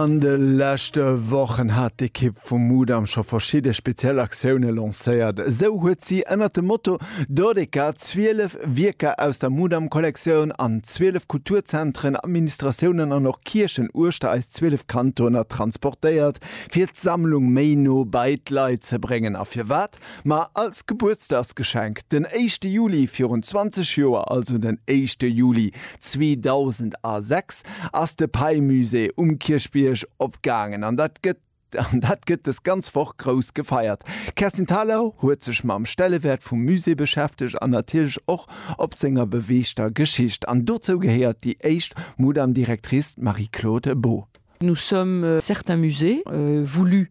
An de leschte Wochen hat d'Ekipp vum Mudam scho verschidde speziell Aktioune lancéiert. Esou huet si ënnert dem Motto Dodeka 12 Wierker aus der Mudam-Kollektioun an 12 Kulturzentren, Administratiounen an och Kierchen uechter eis 12 Kantoner transportéiert, fir d'Sammlung méi no bei d'Leit ze bréngen. A firwat? Ma als Gebuertsdagsgeschenk, den éischte Juli virun 20 Joer, also den éischte Juli 2006, ass de Pei-Musée um Kierchbierg opgaangen an dat gëtt an dat gëtt dës ganz Woch grouss gefeiert. D'Kerstin Thalau huet sech mam Stellewäert vum Musée beschäftegt an natierlech och op senger beweegter Geschicht. An dozou gehéiert déi éischt Mudam-Directrice, d'Marie-Claude Beaud. Nous sommes certains musées, voulus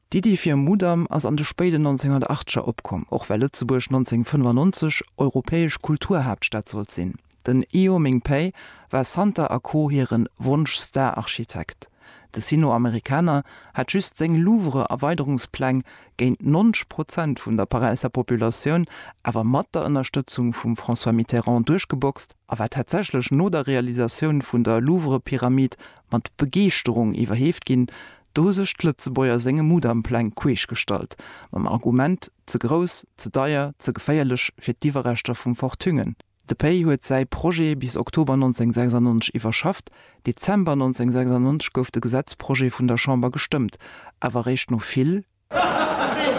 D'Iddi fir e Mudam ass an de spéiden 1980er opkomm, och well Lëtzebuerg 1995 europäesch Kulturhaaptstad sollt sinn. Den Io Ming Pei war Santer a Co hire Wonsch-Star-Architekt. De Sino-Amerikaner hat just seng Louvre-Erweiderungspläng géint 90 Prozent vun der Paräisser Populatioun, awer mat der Ënnerstëtzung vum François Mitterrand, duerchgeboxt a war tatsächlech no der Realisatioun vun der Louvre-Pyramid mat Begeeschterung iwwerheeft ginn, Do hu sech d'Lëtzebuerger senge Mudampläng queesch gestallt, mam Argument, ze grouss, ze deier, ze geféierlech fir d'Iwwerreschter vum Fort Thüngen. De Pei huet säi Projet bis Oktober 1996 iwwerschafft, Dezember 1996 gouf de Gesetzprojet vun der Chamber gestëmmt, awer eréischt no vill, vill,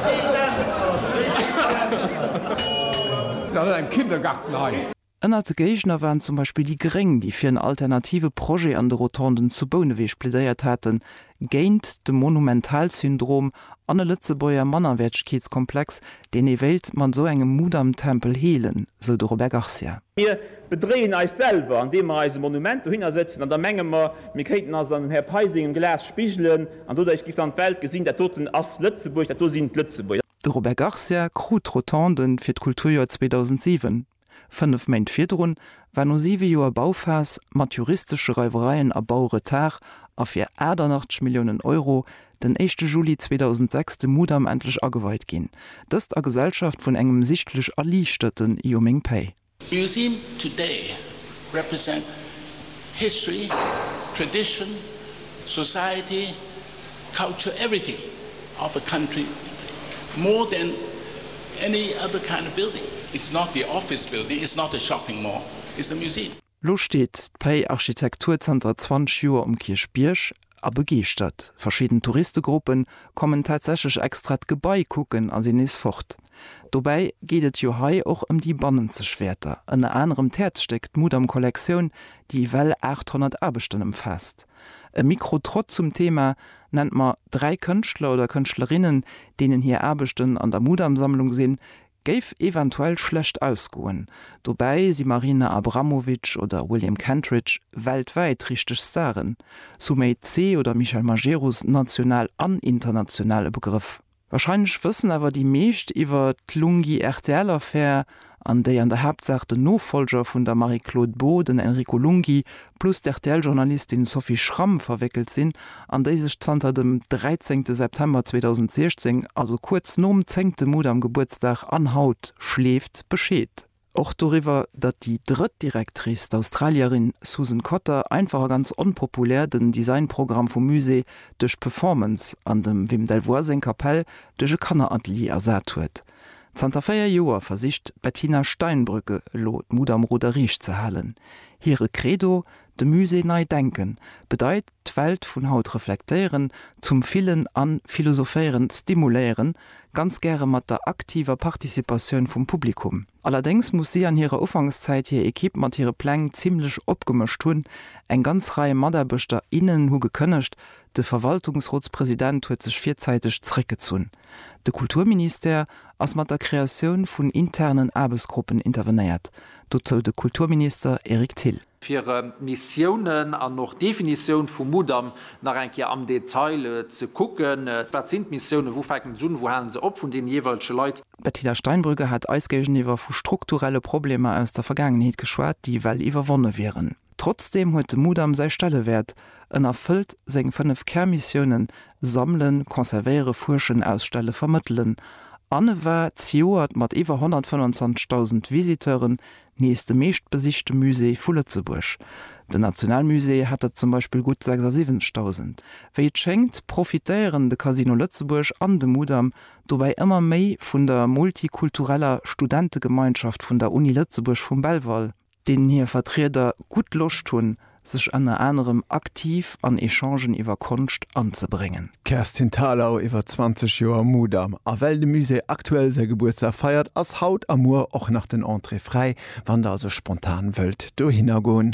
vill. Ënnert de Géigner waren zum Beispill déi Gréng, déi fir en alternative Projet an de Rotonden zu Bouneweg plädéiert haten, géint de Monumentalsyndrom an e Lëtzebuerger Mannerwäertegkeetskomplex, deen ee wéilt mat esou engem Mudamtempel heelen, sou de Robert Garcia. Mir bedréien eis selwer, andeem mer eis e Monument dohinner sëtzen an da menge mer, mir kéinten eis an dem Här Pei sengem Glas spigelen an doduerch géif dann d'Welt gesinn, dat doten ass Lëtzebuerg, dat do sinn d'Lëtzebuerger. De Robert Garcia krut d'Rotonden fir d'Kulturjoer 2007. Fënnef Méint virdrun war no siwe Joer Bauphas mat juristesche Reiwereien a Bauretard a fir 88 Milliounen Euro den éischte Juli 2006 de Mudam endlech ageweit ginn, dëst a Gesellschaft vun engem sichtlech erliichterten Io meng Päi. Museum today represent history, tradition, society. Culture everything of a country more than any other kind of building. It's not the office building, it's not a shopping mall, it's a museum. Lo steet d'Pei Architektur zanter 20 Joer um Kierchbierg a begeeschtert. Verschidden Touristegruppe kommen tatsächlech extra d'Gebai kucken a sinn nees fort. Dobäi geet et jo hei och ëm déi bannenzeg Wäerter, ënner anerem d'Häerzstéck, d'Mudam-Kollektioun, déi ewell 800 Aarbechten ëmfaasst. E Mikrotrott zum Thema nennt mer dräi Kënschtler oder Kënschtlerinnen, deenen hir Aarbechten an der Mudam-Sammlung sinn, géif eventuell schlecht ausgoen. Dobäi si Marina Abramovic oder William Kentridge weltwäit richteg Staren, Sumay Tse oder Michel Majerus national an international e Begrëff. Wahrscheinlech wëssen awer déi meescht iwwer d'Lunghi-RTL-Affär, an déi an der Haaptsaach den Nofollger vun der Marie-Claude Beaud, den Enrico Lunghi, plus d'RTL-Journalistin Sophie Schramm verwéckelt sinn, an déi sech zanter dem 13 September 2016, also kuerz nom zéngte Mudam-Gebuertsdag an haut, schleeft Bescheed. Och doriwwer, datt déi drëtt Directrice, d'Australierin Susan Cotter, einfach a ganz onpopulär den Designprogramm vum Musée duerch d'Performance an dem Wim Delvoye seng Kapell duerch e Kanneratelier ersat huet. Zanter véier Joer versicht d'Bettina Steinbrück elo d'Mut am Ruder riicht ze halen. Hire Credo, De Musée nei denken bedeit d'Welt vun haut reflektéieren, zum Fillen a Philosophéieren stimuléieren, ganz gäre mat der aktiver Participatioun vum Publikum. Allerdéngs muss si an hirer Ufankszäit hir Ekipp mat hire Pläng zimmlech opgemëscht hunn. Eng ganz Rei Mataarbechter, innen hu gekënnegt, de Verwaltungsrotspresident huet sech virzäiteg zeréckgezunn. De Kulturministère ass mat der Kreatioun vun internen Aarbechtsgruppen intervenéiert, dozou de Kulturminister Eric Thill. fir Missiounen an och Definitioun vum Mudam nach eng Kéier am Detail ze kucken, wat sinn d'Missiounen, wou fänken se un, wou halen se op, vun deene jeeweilege Leit. D'Bettina Steinbrügge hat eis géigeniwwer vu strukturelle Problemer aus der Vergaangenheet geschwat, déi well iwwerwonne wieren. Trotzdeem huet de Mudam säi Stellewäert, en erfëllt seng fënnef Kärmissiounen, Sammelen, Conservéiere, Fuerschen, Ausstelle, Vermëttelen, an e war zejoert mat iwwer 125.000 Visiteuren Nees de meeschtbesichte Musée vu Lëtzebuerg. Den Nationalmusée hat der zum Beispill gutt 76.000. Wéi et schéngt, profitéieren de Casino Lëtzebuerg an de Mudam dobäi ëmmer méi vun der multikultureller Studentegemeinschaft vun der Uni Lëtzebuerg vum Belval, deenen hir Vertrieder gutt Loscht hunn, sech ënner anerem aktiv an Echangen iwwer Konscht anzebréngen. D'Kerstin Thalau, iwwer 20 Joer Mudam. A well de Musée aktuell säi Gebuertsdag feiert, ass haut a muer och nach den Entrée fräi, wann der also spontan wëllt dohinner goen.